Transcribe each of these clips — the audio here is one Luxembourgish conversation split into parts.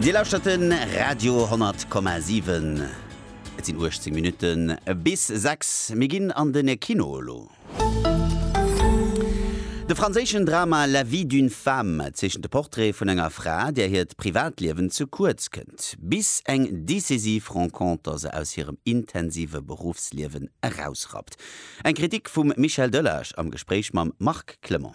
Dir lauschtert de Radio 10,7. Et sinn 18 Minutte bis 6. Mir ginn an de Kino elo. De franséischen Drama La vie d'une femme zeechent de Portrait vun enger Fra, där hiert Privatliewen ze kuerz kënnt, bis eng decisiv Renconter se aus hirem intensive Beruffsliewen erausrappt. Eng Kritik vum Michel Delage am Gespréich mam Marc Clement.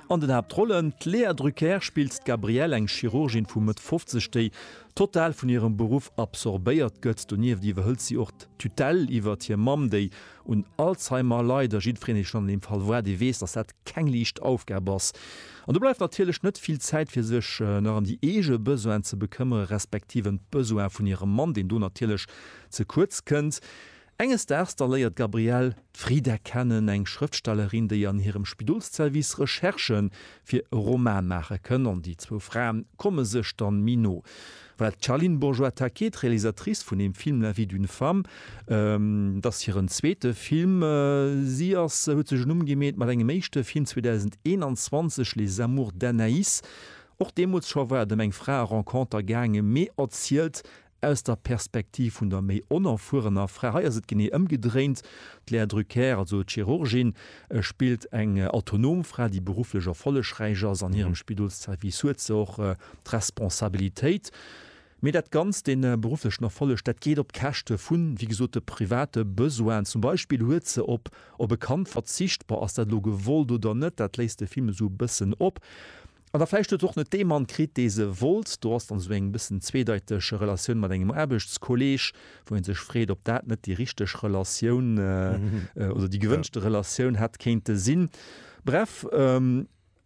An den Haaptrollen, D'Lea Drucker spillt d'Gabrielle, eng Chirurgin vu Mëtt 50, déi total vun hirem Beruff absorbéiert gëtt. Donieft iwwerhëlt si och d'Tutelle iwwert hir Mamm, déi un Alzheimer leit. A jiddwereen, dee schonn an deem Fall war, dee weess, datt dat keng liicht Aufgab ass. An do bleift natierlech net vill Zäit, fir sech nach ëm déi eege Besoinen ze bekëmmere respektiv ëm d'Besoine vun hirem Mann, deen do natierlech ze kuerz kënnt. Enges Daags da léiert d'Gabrielle d'Frida kennen, eng Schrëftstellerin, déi an hirem Spidolsservice Recherchë fir e Roman maache kënn, an déi zwou Fraen komme sech dann méi no. Well d'Charline Bourgeois-Taquet, d'Realisatrice vun dem Film La vie d'une femme, et ass hiren zweete Film, si ass, huet sech en Numm gemeet mat engem éischte Film 2021, Les amours d'Anaïs, och deemools scho war et ëm eng Frae-Renconter gaangen, mee erzielt Aus der Perspektiv vun der méi onerfuerener Fra, hei ass et genee ëmgedréint, d'Lea Drucker, also d'Chirurgin, spillt eng autonom Fra, déi berufflech erfollegräich ass an hirem Spidolsservice, huet se och d'Responsabilitéit, mee dat Ganzt, dee berufflechen Erfolleg, dat geet op Käschte vu wéi gesot de private Besoinen. Zum Beispill huet se op op e Kand verzicht, bon, ass dat elo gewollt oder net, dat léisst de Film esou e bëssen op. An da vläicht huet se och net dee Mann kritt, dee se wollt. Do ass dann esou eng bëssen zweedeiteg Relatioun mat engem Aarbechtskolleeg, wou ee sech freet, ob dat net déi richteg Relatioun oder déi gewënschte Relatioun hätt kéinte sinn. Bref,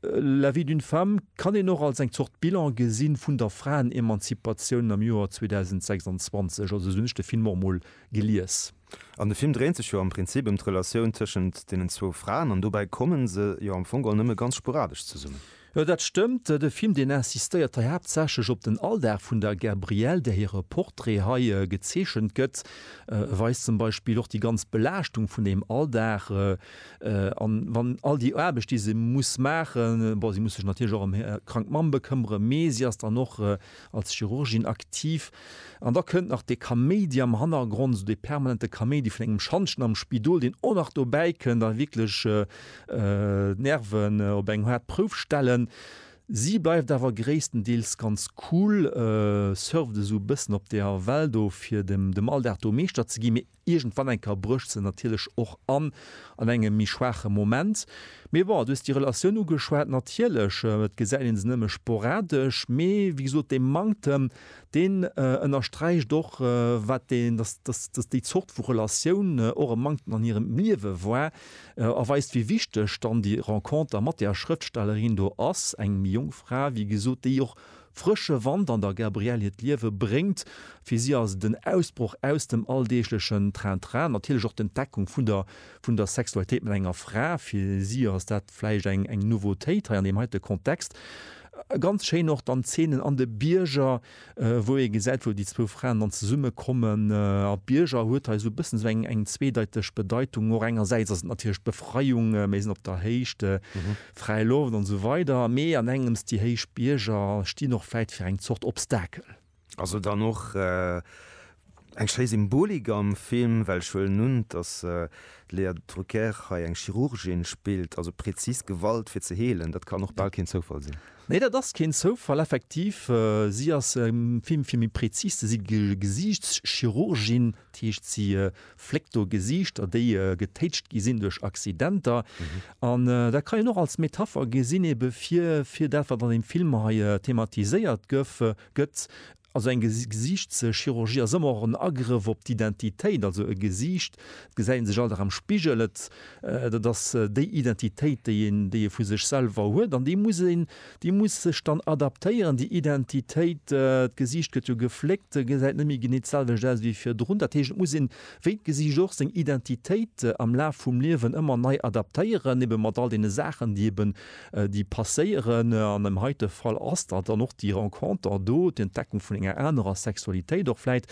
La vie d'une femme kann een och als eng Zort Bilan gesi vun der Fraenemanzipatioun am Joer 2026. Also esou hunn ech de Film och emol gelies. An de Film dréint sech jo am Prinzip ëm d'Relatioun tëschent deenen zwou Fraen an dobäi komme se jo am Fong geholl nëmme ganz sporadesch zesummen. Jo, dat stëmmt. De Film, deen insistéiert hei haaptsächlech op den Alldag vun der Gabrielle, där hire Portrait hei gezeechent gëtt, weist zum Beispill och déi ganz Belaaschtung vun deem Alldag an wann all déi Aarbecht, déi se muss maachen, bon, si muss sech natierlech och ëm hir krank Mamm bekëmmere, mee si ass dann och als Chirurgin aktiv, an da kënnt nach dee Kaméidi am Hannergrond, esou dee permanente Kaméidi vun engem Schantjen am Spidol, deen och nach dobäi kënnt a wierklech d'Nerven op eng haart Prouf stellen. Si bleift awer gréisstendeels ganz cool, surft esou e bëssen op der Well do, fir dem Alldag do Meeschter ze ginn, mee Iergendwann eng Kéier brécht se natierlech och an, an engem méi schwaache Moment. Mee bon, du hues déi Relatioun ugeschwat, natierlech, et gesäit ee se nëmme sporadesch, mee wéi gesot, dee Manktem, deen ënnersträicht och, wat deen, dass, dass, dass déi Zort vu Relatioun och e Manktem an hirem Liewe war, a weist, wéi wichteg dann déi Renconter mat där Schrëftstellerin do ass, eng méi jonk Fra, wéi gesot, déi och Frësche Wand an der Gabrielle hiert Liewe bréngt. Fir si ass et en Ausbroch aus dem alldeeglechen Train-Train, natierlech och d'Entdeckung vun der vun der Sexualitéit mat enger Fra. Fir si ass dat vläicht eng eng Nouveautéit hei an deem heite Kontext. Ganz schéin och dann d'Zeenen an de Bierger, wou ee gesäit, wou déi zwou Fraen dann zesumme kommen. A Bierger huet hei esou e bëssen esou eng eng zweedeiteg Bedeitung. Och engersäits ass et natierlech d'Befreiung, mir sinn op der Héicht, Fräi Loft an esou weider, mee an engems, déi héich Bierger stinn och vläit fir eng Zort Obstakel. Ass et dann och eng schéi Symbolik am Film, well ech huelen un, dass d'Léa Drucker hei eng Chirurgin spillt, also präzis Gewalt fir ze heelen, dat kann och bal keen Zoufall sinn. Nee, dat ass keen Zoufall, effektiv. Si ass am Film, fir méi präzis ze si, Gesiichtschirurgin, dat heescht si fléckt do Gesiichter, déi getéitscht gi sinn duerch Accidenter. An dat kann een och als Metapher gesinn ebe fir, fir dat, wat an deem Film hei thematiséiert gëff, gëtt. Also eng Gesiichtschirurgie ass ëmmer och en Agrëff op d'Identitéit. Also e Gesiicht, et gesäit ee sech all Dag am Spigel, et, dat ass déi Identitéit, déi een, déi ee vu sech selwer huet. An déi muss een Déi muss sech dann adaptéieren, déi Identitéit. D'Gesiicht gëtt jo gefléckt, gesäit net méi genee d'selwecht aus wéi virdrun. Dat heescht, et muss een, wéi d'Gesiicht och, seng Identitéit am Laf vum Liewen ëmmer nei adaptéieren, ebe mat all deene Saachen, déi eben, déi passéieren. An dem heite Fall ass dat dann och déi Renconter do, d'Entdeckung vun enger anerer Sexualitéit och vläit.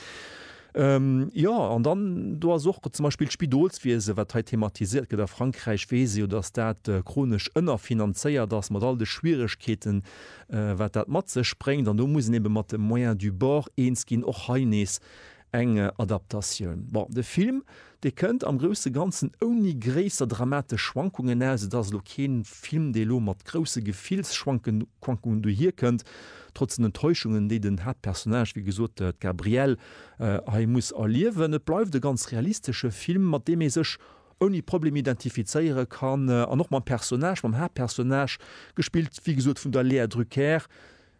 Jo, an dann do ass och zum Beispill d'Spidolswiese, wat hei thematiséiert gëtt. A Frankräich weess ee jo, datt dat chronesch ënnerfinanzéiert ass, mat all de Schwieregkeeten, wat dat mat sech bréngt. An do muss een ebe mat de Moyens du bord eens ginn. Och hei nees eng Adaptatioun. Bon, de Film, Dee kënnt am grousse Ganzen ouni gréisser dramatesch Schwankungen aus. Et ass elo kee Film, dee elo mat grousse Gefillsschwankungen dohier kënnt, trotz den Enttäuschungen, déi den Haaptpersonnage, wéi gesot, d'Gabrielle, hei muss erliewen. Et bleift e ganz realistesche Film, mat deem ee sech ouni Problem identifizéiere kann an och mam Personnage, mam Haaptpersonnage, gespillt, wéi gesot, vun der Léa Drucker,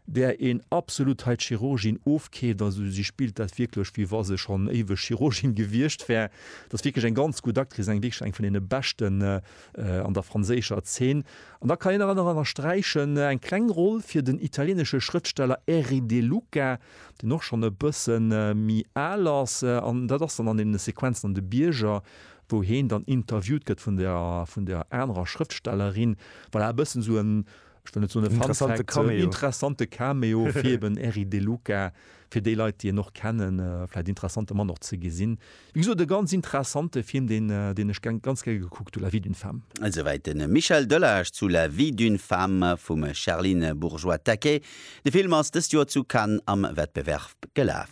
där een absolut hei d'Chirurgin ofkeeft, also si spillt dat wierklech wéi wa se schonn éiweg Chirurgin gewiescht wär, dat ass wierklech eng ganz gutt Actrice, eng wierklech eng vun deene beschten an der franséischer Zeen. An da kann een nach ënnersträichen eng kleng Roll fir den italieenesche Schrëftsteller Erri De Luca, deen och schonn e bësse méi al ass, an dat ass dann an deene Sequenzen an de Bierger, wou heen dann interviewt gëtt vun der anerer Schrëftstellerin, voilà e bëssen esou en Ech wëll net soen e Fun Fact, interessante Cameo. en interessante Cameo fir eben Eric De Luca, fir déi Leit déi en och kennen, vläit interessante Mann och ze gesinn. Wéi gesot e ganz interessante Film deen deen ech gern ganz gär gekuckt hunn, La vie d'une femme. Esouwäit de Michel Delage zu La vie d'une femme vum Sherlyne Bourgeois-Taquet. De Film ass dëst Joer zu Cannes am Wettbewerb gelaf.